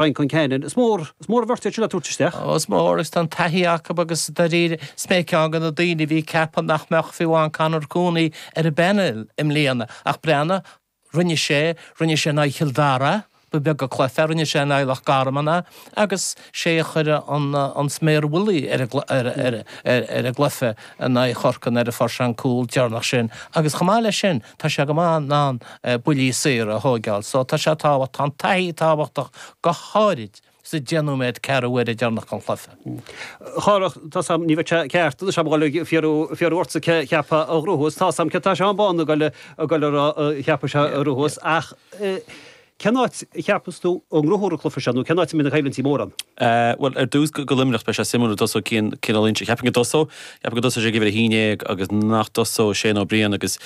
Brian Concannon, Is mór, is mór an bheirt iad sin le tabhairt isteach. Is mór agus tá an taithí acu agus dáiríre is mé ceann de na daoine a bhí ag ceapadh nach mbeadh fiú amháin Conor Cooney ar an bpainéal i mbliana ach breathnaigh, rinne sé, rinne sé in aghaidh Chill Dara, ba bheag a chloisfeá, rinne sé in aghaidh Loch Garman agus sé a chuir an sméar mhullaigh ar an gcluiche in aghaidh Chorcaigh as an force-áil an cúl deireanach sin agus chomh maith leis sin tá sé go maith in ann buillí saora a thóigeáil so tá sé tábhachtach tá an taithí tábhachtach go háirid sa deich nóiméad ceathrú uaire deireanach den chluiche. Chárthaigh, tá's agam ní bheidh sé ceart anois agam a ghoil ag fiafraí fiafraí ortsa cé cheapfá a ghnóthós tá's agam cé tá Seán Bán a ghoil a ghoil a cheapfadh sé a ghnóthós ach cén áit a cheapas tú a ngnóthófar an cluife seo nó cén áit a mbíonn na coimhlintí mór ann? Bhuel ar dtús go go luimneach beidh sé suimiúil a dtosóidh Cian Cian Ó Loingsigh cheapfainn go dtosóidh Cheapfainn go dtosóidh sé ag uimhir a haon déag agus nach dtosóidh Shane Ó Briain agus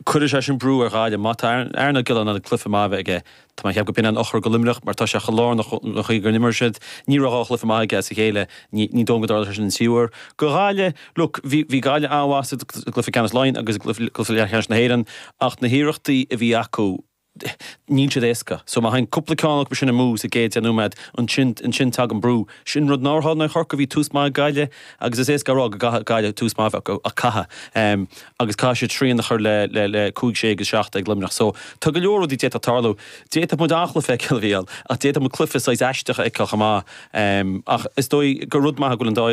cuirfidh sé sin brú ar Ghaillimh. Má tá Aaron Ó Giolláin in ann cluife maith a bheith aige. Tá mé ag ceapadh go b'in an eochair go Luimneach mar tá sé chomh lárnach an chaoi go n-imríonn siad. Ní raibh dhá chluife maith aige as a chéile. Ní dóigh liom go dtarlóidh sé sin an tríú uair go Ghaillimh. Look, bhí Gaillimh an-mhaith sa gcluife ceannais Laighean agus i gcluife leathcheannais na hÉireann ach na hiarrachtaí a bhí acu, níl siad éasca so má théann cúpla ceann acu sin amú sa gcéad deich nóiméad ansin ansin tagann brú. Sin rud nár tharla in aghaidh Chorcaigh, bhí tús maith ag Gaillimh agus is éasca a rá go gcaithfidh Gaillimh tús maith a bheith acu ach caithfidh agus caithfidh siad srian a chur le le le cúig sé agus seacht ag Luimneach so tá go leor rudaí a d'fhéadfadh tarlú. D'fhéadfadh muid an-chluiche a fheiceáil a Mhíchíl ach d'fhéadfadh muid cluiche saghas aisteach a fheiceáil chomh maith ach is dóigh gur rud maith go bhfuil an dá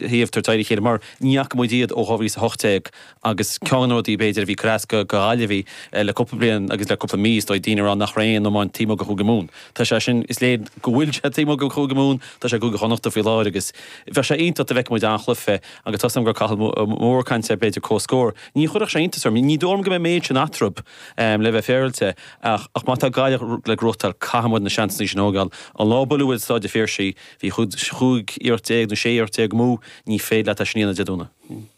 thaobh in aghaidh a chéile mar ní fhaca muid iad ó 2018. agus ceann de na rudaí b'fhéidir a bhí ag cur as go Ghaillimhigh le cúpla bliain agus le cúpla mí is dóigh daoine a rá nach raibh aon iomáint taobh amuigh de Chúige Mumhan. Tá sé sin, is léir go bhfuil sé taobh amuigh de Chúige Mumhan, tá sé i gCúige Chonnacht faoi láthair agus bheadh sé iontach dá bhfeicfeadh muid an-chluife agus tá súil agam go raibh Cathal Moore ag caint ar b'fhéidir comhscór. Ní chuirfeadh sé iontas orm, ní dóigh liom go mbeidh an méid sin eatarthu le bheith féaráilte ach ach má tá Gaillimh le gnóthachtáil caithfidh muid na seansanna sin a thógáil. An lá a buaileadh muid i Staid an Phiarsaigh bhí chúig iarracht déag nó sé iarracht déag amú, ní féidir leo é sin a dhéanamh Dé Domhnaigh.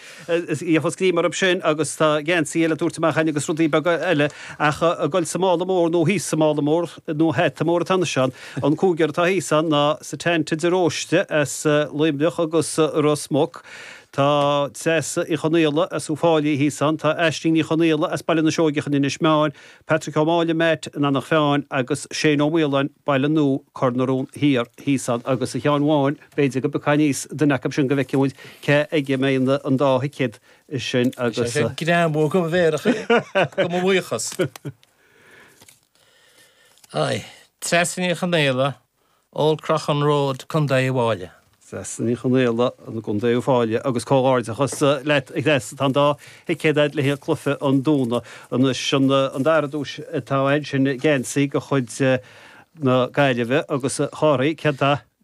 Is é a fuair greim orthu sin agus tá geansaí le tabhairt amach againn agus rudaí beaga eile ach ag dul sa mála mór nó thíos sa mála mór nó hata mór atá anois ann. An cúigear atá thíos ann ná Setanta de Róiste as Luimneach agus Ros Muc, tá Treasa Uí Chonaola as Uí Fáilí thíos ann, tá Aisling Uí Chonaola as Baile na Seoigeach in Inis Meáin, Patrick Ó Máille, Matt, in Anach Mheáin agus Shane Ó Maoláin, Baile Nua, Cor na Rón Thiar thíos ann agus a Sheáin Bháin, B'fhéidir go bpiocfá aníos duine acu sin go bhfeicfidh muid cé aige a mbeidh an dá thicéad sin agus. Tá sé greannmhar go bhféarach é, go mo bhuíochas. Aye. Treasa Ní Chonaola, Old Croghan Road, Co Uíbh Fhailí. Treasa Ní Chonaola, Co Uíbh Fhailí agus comhghairdeachas leat a Threasa, tá an dá thicéad a'd le haghaidh chluiche an Domhnaigh. Anois an dara duais atá ansin geansaí de chuid na Gaillimhe agus a Chárthaigh, cén dath?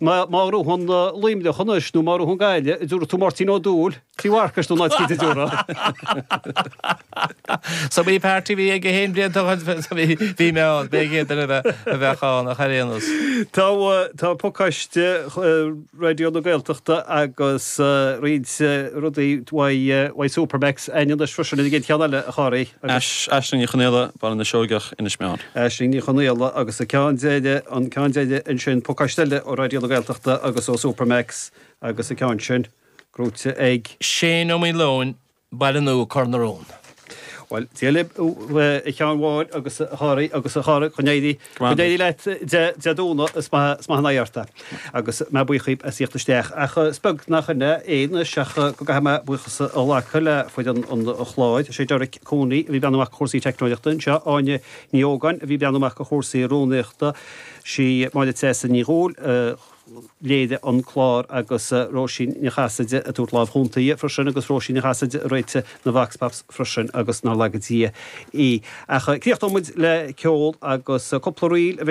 Ná má ghnóthaíonn Luimneach anois nó má ghnóthaíonn Gaillimh, a dúradh tú Máirtín Ó Dubhghaill, Tí Mharcais nó ná trí de dúradh. Sa mí páirt a bhí ag a haon blianta dhó bhí mé ann, b'é an chéad duine a bheadh ann ar aon nós. Tá tá pacáiste Raidió na Gaeltachta agus roinnt rudaí uaidh uaidh Supermac's ann anois freisin an chéad cheann eile a Chárthaigh agus. Aisling Ní Chonaola, Baile na Seoigeach. Corcaigh, Inis Meáin. Aisling Ní Chonaola agus an ceann deiridh, an ceann deiridh ansin, pacáiste eile ó Raidió na Gaeltachta agus ó Supermac's agus an ceann sin gnóthaithe ag. Shane Ó Maoileoin, Baile Nua, Cor na Rón. Bhuel, dia libh a Sheáin Bháin agus a Chárthaigh agus a Chara, go n-éirí leat Dé Domhnaigh, is maith an aghaidh ort é. Agus mé buíoch dhaoibh as a thíocht isteach. Ach is beag nach in é anois ach go gcaithfidh mé buíochas a ghlacadh le foireann an chláir. Is é Derek Cooney a bhí ag breathnú amach do chúrsaí teicneolaíochta anseo, Áine Ní Ógáin a bhí ag breathnú amach do chúrsaí rúnaíochta, sí Máire Treasa Ní Dhubhghaill a léirigh an clár agus Róisín Ní Chasaide ag tabhairt láimh chúnta freisin agus Róisín Ní Chasaide a réitigh na Vox Pops freisin agus nár laga Dia í. Ach críochnóimid le ceol agus cúpla ríl a bheidh